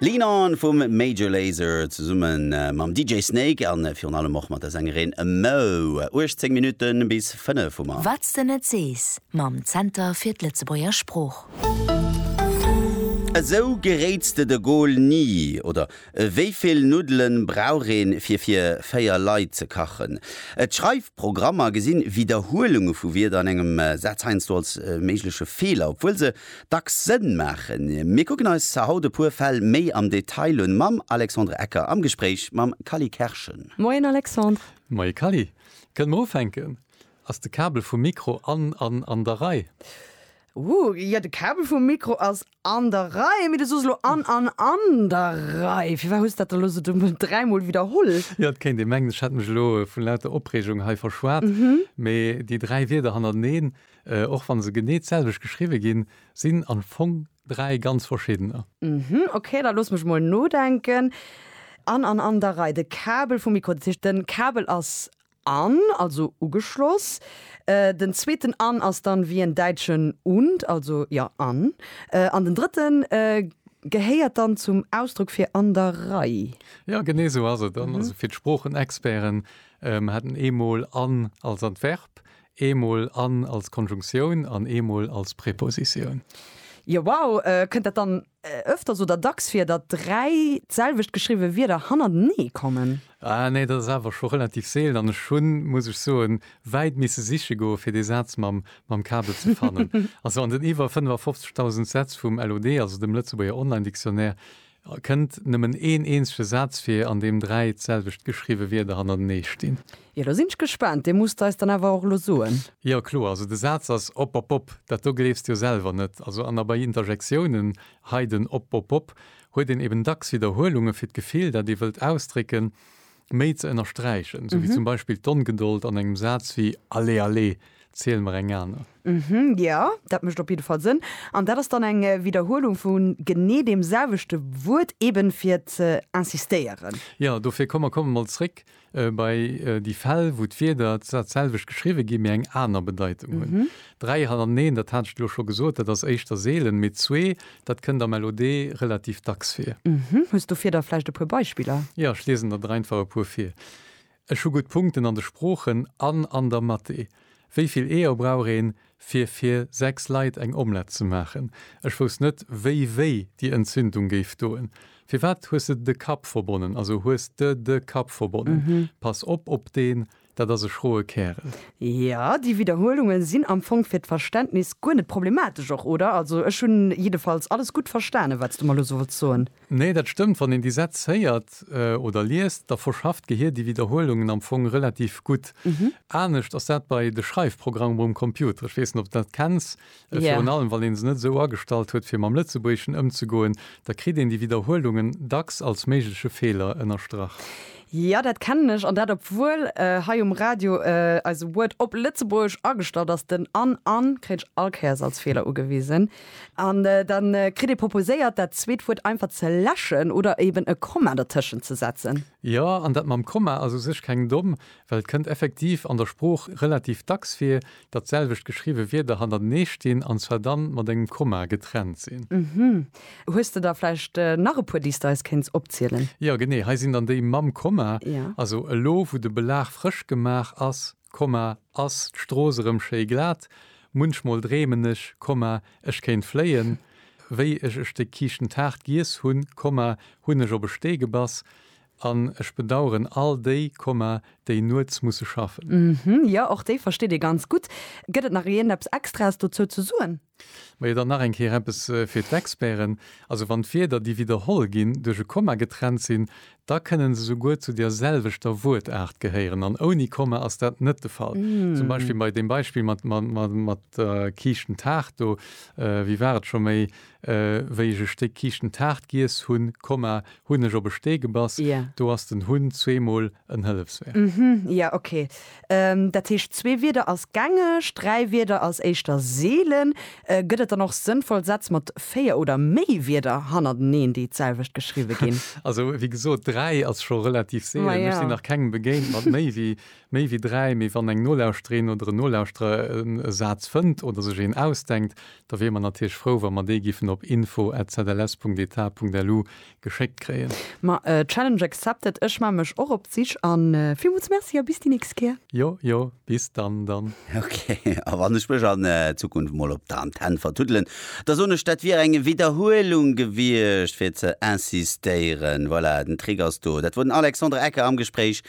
Lean On vum Major Lazer zesumme mam DJ Snake a virun allem och mat der Sängerin Moe. 18 Minutte bis 5 hu mer. Wat s de net sees mam Zenter fir d'Lëtzebuerger Sprooch. Esou geréits de de Goal ni! oder Wéi vill Nuddelen brauch een fir fir 4 Leit ze kachen? D'Schreifprogrammer gesinn Widderhuelunge vu Wierder an engem Saz heiansdo als méigleche Feeler, obwuel se dacks Sënn maachen. Mir kucken eis haut e puer Fäll méi am Detail un, mam Alexandre Ecker am Gespréich mam Kally Kerschen. Moien Alexandre. Moie Kally. Kënne mer ufänken? Ass de Kabel vum Mikro an an an der Rei? Ooh, jo de Kabel vum Mikro ass an der Rei, mee du sos elo an an an der Rei. Firwat hues dat da elo esou dumm dräimol widderholl? Jo, et kéint ee mengen, ech hätt mech elo vu lauter Opreegung hei verschwat, mee déi dräi Wierder hannerteneen, Och wann se genee d'selwecht geschriwwe ginn, sinn am Fong dräi ganz verschiddener. Uhmm, ok, da looss mech mol nodenken. An, an, an der Rei, de Kabel vum Mikro, dat heescht den Kabel ass an, also ugeschloss. Den zweeten an ass dann wéi en däitschen und, also jo, an. An den drëtten gehéiert dann zum Ausdrock fir an der Rei. Jo, genee esou ass et. An, also fir d'Sproochenexperten, mer haten eemol an als Adverb, Eemol an als Konjunktioun an eemol als Prepositioun. Jo, wow! Kënnt dat dann ëfters oder dacks vir, datt dräi d'selwecht geschriwwe Wierder hannertenee kommen? Ah nee, dat ass awer scho relativ seelen an ech hunn, muss ech soen, wäit misse siche goe fir dee Saz mam mam Kabel ze fannen. Also an den iwwer 55.000 Sätz vum LOD, also dem Lëtzebuerger Online-Dictionnaire, Et kënnt nëmmen een eenzege Saz vir, an deem dräi d'selwecht geschriwwe Wierder hannertenee stinn. Jo, do sinn ech gespaant. Dir musst eis dann awer och elo soen. Jo, kloer. Also de Saz ass opopop. Dat do gleefs de jo selwer net. Also an a bei Interjektiounen, hei den opopop, huet een eben dacks Widderhuelunge fir d'Gefill, dat ee wëllt ausdrécken. méi ze ënnersträichen, esou wéi zum Beispill d'Ongedold an engem Saz wéi Allez, allez, ziel mer eng aner. Jo, dat mécht op jidde Fall Sënn. An dat ass dann eng Widderhuelung vu genee deem selwechte Wuert, eeben fir ze insistéieren. Jo, dofir komm mer komme mol zréck bei déi Fäll, wou d'Wierder dat selwecht geschriwwe ginn, mee eng aner Bedeitung hunn. Dräi hannerteneen, dat hat ech elo scho gesot, dat ass éischter seelen, mee zwee Dat kënnt am LOD relativ dacks vir. Mhm. Hues du fir der vläicht e puer Beispiller? Jo, ech liesen der der einfach e puer vir. Ech hu gutt Punkten an de Sproochen an an der Mathé. Wéi vill Eeër brauch een, fir fir sechs Leit eng Omlett ze maachen? Ech wousst net, wéi wéi déi Entzündung géif doen. Firwat hues de de Kapp verbonnen? Also, hues de de Kapp verbonnen? Pass op op den. Dat ass e schroe Kärel. Jo, déi Widderhuelungen sinn am Fong fir d'Verständnis guer net problematesch och, oder? Also ech hunn jiddefalls alles gutt verstanen, wat s du mer elo sou wollts soen. Nee, dat stëmmt. Wann een déi Sätz héiert oder liest, da verschafft d'Gehir déi Widderhuelungen am Fong relativ gutt. Anescht ass dat bei de Schreifprogrammen um Computer. Ech weess net, ob s dat kenns. A virun allem, wann ee se net esou agestallt huet, fir mam Lëtzebuergeschen ëmzegoen, da kritt een déi Widderhuelungen dacks als méigleche Feeler ënnerstrach. Jo, dat kennen ech, an dat obwuel hei um Radio eise Word op Lëtzebuergesch agestallt ass. Den an an kréien ech all Kéiers als Feeler ugewisen. An da kritt ee proposéiert, dat zweet Wuert einfach ze läschen oder eben e Komma dertëschent ze setzen. Jo, an dat mam Komma ass u sech keng domm, well et kënnt effektiv an der Sprooch relativ dacks vir, dat selwecht geschriwwe Wierder hannertenee stinn an zwar dann mat engem Komma getrennt sinn. Uhmm. Hues de da vläicht nach e puer déi s de eis kéints opzielen? Jo genee, hei sinn dann déi mam Komma, Jo. Also elo wou de Belag frësch gemaach ass, Komma, ass d'Strooss erëm schéi glat, munchmol dreemen ech, Komma, ech kéint fléien, wéi ech e Stéck Kiischtentaart giess hunn, Komma, hunn ech op e Stee gebass, An ech bedaueren all déi, déi nuets musse schaffen. Hm, jo, och déi versteet ee ganz gutt. Gëtt et nach iergendeppes Extraes dozou ze soen? Majo, dann nach eng Kéier eppes fir d'Experten. Also wann d'Wierder, déi widderholl ginn, duerch e Komma getrennt sinn, da kënnen se souguer zu der selwechter Wuertaart gehéieren. An ouni Komma ass dat net de Fall. Zum Beispill bei deem Beispill mat der kiischten Taart do, wéi war et scho méi Wéi ech e Stéck kiischten Taart giess hunn, Komma, hunn ech op e Stee gebass. Jo. Do ass den hunn zweemol en Hëllefsverb. Mhm, jo, ok. Dat heescht, zwee Wierder als gängeg, dräi Wierder als éischter seelen. Gëtt et dann och sënnvoll Sätz mat véier oder méi Wierder hannerteneen, déi d'selwecht geschriwwe ginn? Also, wéi gesot, dräi ass scho relativ seelen. Ech sinn nach kengem begéint mat méi wéi. Méi wéi dräi, mee wann eng Nolauschterin oder en Nolauschterer e Saz fënnt oder sech een ausdenkt, da wiere mer natierlech frou, wa mer dee giffen op info@zls.eta.lu geschéckt kréien. Ma Challenge accepted, ech maan mech och op d'Sich an villmools Merci a bis déi nächst Kéier. Jo, jo, bis dann dann. Ok, a wann ech mech an Zukunft mol op der Antenn vertuddelen, da soen ech, dat wier eng Widderhuelung gewiescht fir ze insistéieren. Voilà, den Trick ass do. Dat wor den Alexandre Ecker am Gespréich